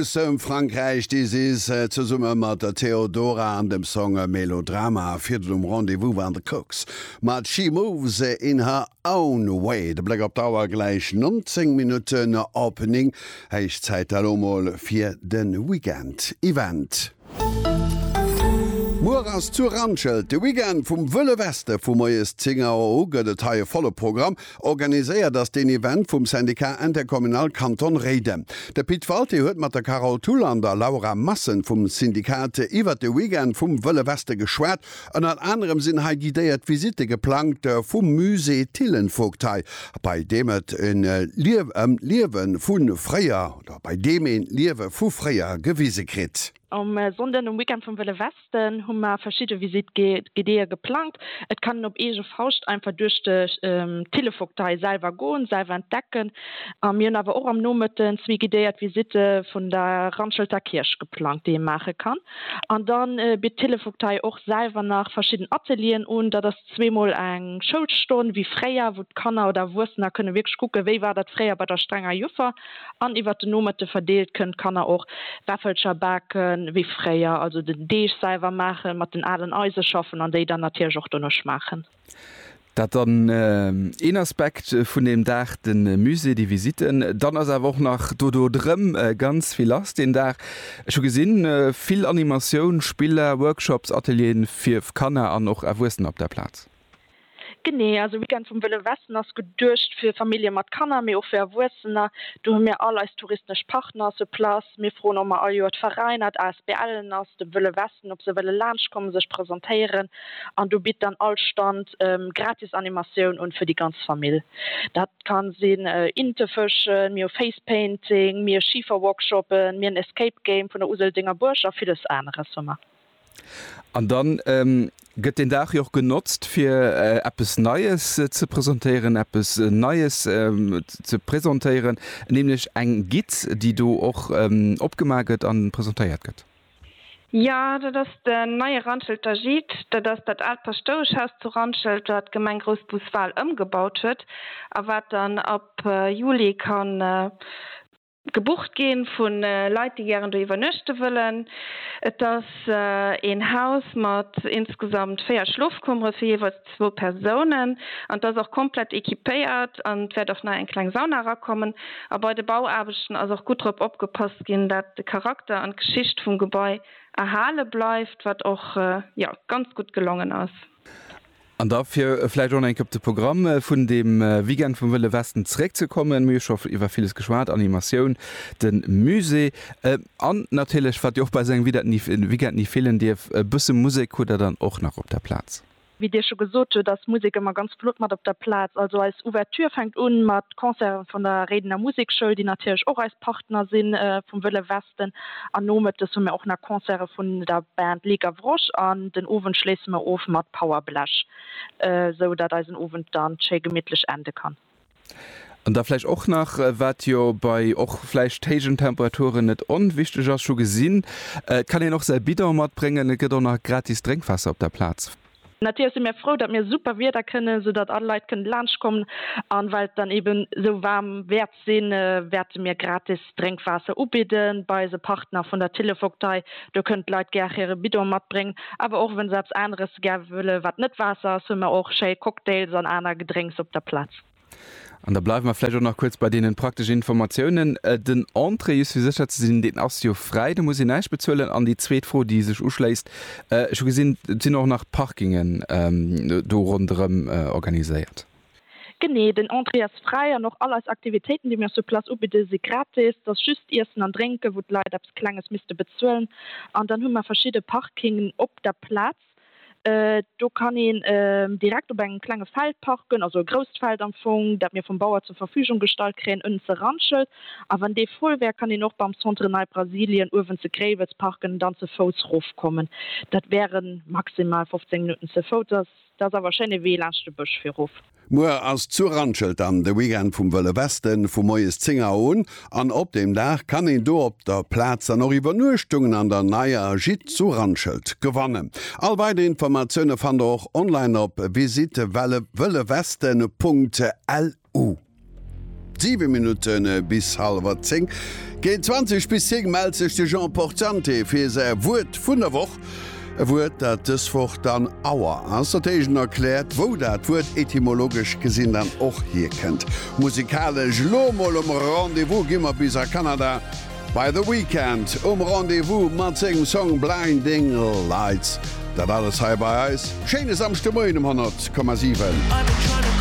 Aus dem Frankräich This Is zesumme mat der Theodora an dem Song Melodrama. Virden um Rendez-Vous waren The Kooks mat She Moves In Her Own Way. De Bléck op d'Auer, gläich 19 Minutten op 9. Héich Zäit da lo mol fir de Weekend Event. Muer ass zu Randschelt de Weekend vum Wëlle Weste. Vu moies 10 Auer u gëtt et hei e volle Programm. Organiséiert ass deen Event vum Syndicat Intercommunal Kanton Réiden. De Pit Walté huet mat der Carole Thull an der Laura Massen vum Syndicat iwwert de Weekend vum Wëlle Weste geschwat. Ënnert anerem sinn hei guidéiert Visitte geplangt vum Musée Thillenvogtei, bei deem et ëm d'Liewe vu fréier oder bei deem een d'Liewe vu fréier gewise kritt. Um Sonnden, um Weekend vum Wëlle Westen, hu mer verschidde Visitt-Guidéeë geplangt. Et kann een op eege Fauscht einfach duerch de Thillevogtei selwer goen, selwer entdecken. A mir hunn awer och am Nomëtten zwee guidéiert Visitte vun der Randschelter Kierch geplangt, déi ee maache kann. An da bitt d'Thillevogtei och selwer nach verschidden Atelieren un. Dat ass. zweemol eng Schoulstonn wéi fréier, wou d'Kanner oder Erwuessener kënne wierklech kucken, wéi war dat fréier bei der strenger Juffer, an iwwert den Nomëtte verdeelt kënnen d'Kanner och Wäffelcher bake wéi fréier, also den Deeg selwer maachen, mat den alen Eise schaffen an déi dann natierlech och dono schmaachen. Dat dann een Aspekt vun deem Dag, de Musée, déi Visitten. Dann ass awer och nach dodo drëm ganz vill lass deen Dag. Ech hu gesinn, vill Animatioun, Spiller, Workshops, Atelieren fir Kanner an och Erwuessener op der Plaz. Genee, also Weekend vum Wëlle Westen ass geduecht fir Famillje mat Kanner, mee och fir Erwuessener. Do hu mir all eis touristesch Partner sur place. Mir froen och mol all Joer d'Veräiner, d'ASBLen ass dem Wëlle Westen, ob se wëlle laanschtkommen, sech presentéieren An do bitt dann all Stand gratis Animatioun un fir déi ganz Famill. Dat ka sinn Inte fëschen, mir hu Face Painting, mir Schiferworkshoppen, mir en Escape Game vun der Useldenger Buerg a villes aneres hu mer. An da gëtt deen Dag jo och genotzt fir eppes Neies ze presentéieren, eppes Neies ze presentéieren, nämlech eng Guide, déi do och opgemaach gëtt a presentéiert gëtt. Jo, dat ass den neie Randschelter Gîte. Dat ass dat aalt Paschtoueschhaus zu Randschelt, wat d'Gemeng Groussbus-Wal ëmgebaut huet a wat dann ab Juli ka gebucht ginn vu Leit, déi gären do iwwernuechte wëllen. Et ass een Haus mat insgesamt véier Schlofkummere fir jeeweils zwou Persounen an d'ass och komplett equipéiert an et wäert och nei eng kleng Sauna erakommen. A bei de Bauaarbechten ass och gutt drop opgepasst ginn, dat de Charakter an d'Geschicht vum Gebai erhale bleift, wat och jo ganz gutt gelongen ass. An da fir vläicht och nach eng Kéier op de Programm vun deem Weekend vum Wëlle Westen zeréckzekommen, mir hu scho iwwer villes geschwat, Animatioun, de Musée an natierlech, wat jo och bei esou engem Weekend ni feelen dierf, e bësse Musek. Hutt Der dann och nach op der Plaz? Wéi Dir scho gesot hutt, ass Musek ëmmer ganz flott mat op der Plaz. Also eis Ouverture fänkt un mat Concerte vun der Réidener Musekschoul, déi natierlech och eis Partner si vum Wëlle Westen. An nomëttes hu mir och nach Concerte vun der Band Les Gavroches an den Owend schléisse mir of mat Power Blech, esou datt eisen Owend dann schéi gemittlech ende kann. An da vläicht och nach, wat jo bei och vläicht héijen Temperaturen net onwichteg ass, scho gesinn, et kann een och säi Bidon matbréngen, et gëtt och nach gratis Drénkwaasser op der Plaz. Natierlech si mir frou, datt mir super Wieder kënnen, soudatt all Leit kënnen laanschtkommen. An well et dann eeben esou waarm wäert sinn, wäerte mir gratis Drénkwaasser ubidden. Bei eise Partner vun der Tillevogtei, do kënnen d'Leit gär hire Bidon matbréngen. Awer och wann se eppes aneres gär wëllen, wat net Waasser ass, hunn mer och schéi Cocktails an aner Gedrénks op der Plaz. An da bleiwe mer vläicht och nach kuerz bei deenen prakteschen Informatiounen. Den Entrée, just fir sécher ze sinn, deen ass jo fräi, do muss een näischt bezuelen. An déi zweet Fro, déi sech uschléisst, Ech hu gesinn, et sinn och nach Parkingen do ronderëm organiséiert. Genee, den Entrée ass fräi an och all eis Aktivitéiten, déi mir sur place ubidden, si gratis. Et ass just d'Iessen an Drénken, wou d'Leit eppes Klenges misste bezuelen. An dann hu mer verschidde Parkingen op der Plaz. Do kann een direkt op engem klenge Feld parken, also e grousst Feld am Fong, dat mir vum Bauer zur Verfügung gestallt kréien, ënnen ze Randschelt. A wann dee voll wär, kann een och beim Centre Nei Brasilien uewen ze Gréiwels parken an dann ze Fouss rofkommen. Dat wäre maximal 15 Minutten ze Fouss. Dat ass awer e schéine Wee laanscht de Bësch fir erof. Muer ass zu Randschelt dann de Weekend vum Wëlle Westen, vu moies 10 Auer un an op deem Dag kann een do op der Plaz dann och Iwwernuechtungen an der neier Gîte zu Randschelt gewannen. All weider Informatioune fannt der och online op visitewellewesten.lu. u. 7 Minutten bis hallwer 10. Géint 20 bis 10 mellt sech de Jean Portante fir säi Wuert vun der Woch. E Wuert, dat dës Woch dann Auer ass. Dat heescht, en erkläert, wou dat Wuert etymologesch gesinn dann och hierkënnt. Musikalesch elo mol um Rendez-vous gi mer bis a Kanada bei The Weeknd um Rendez-vous mat sengem Song Blinding Lights. Dat alles hei bei eis. Schéine Samschdemoien um 100,7.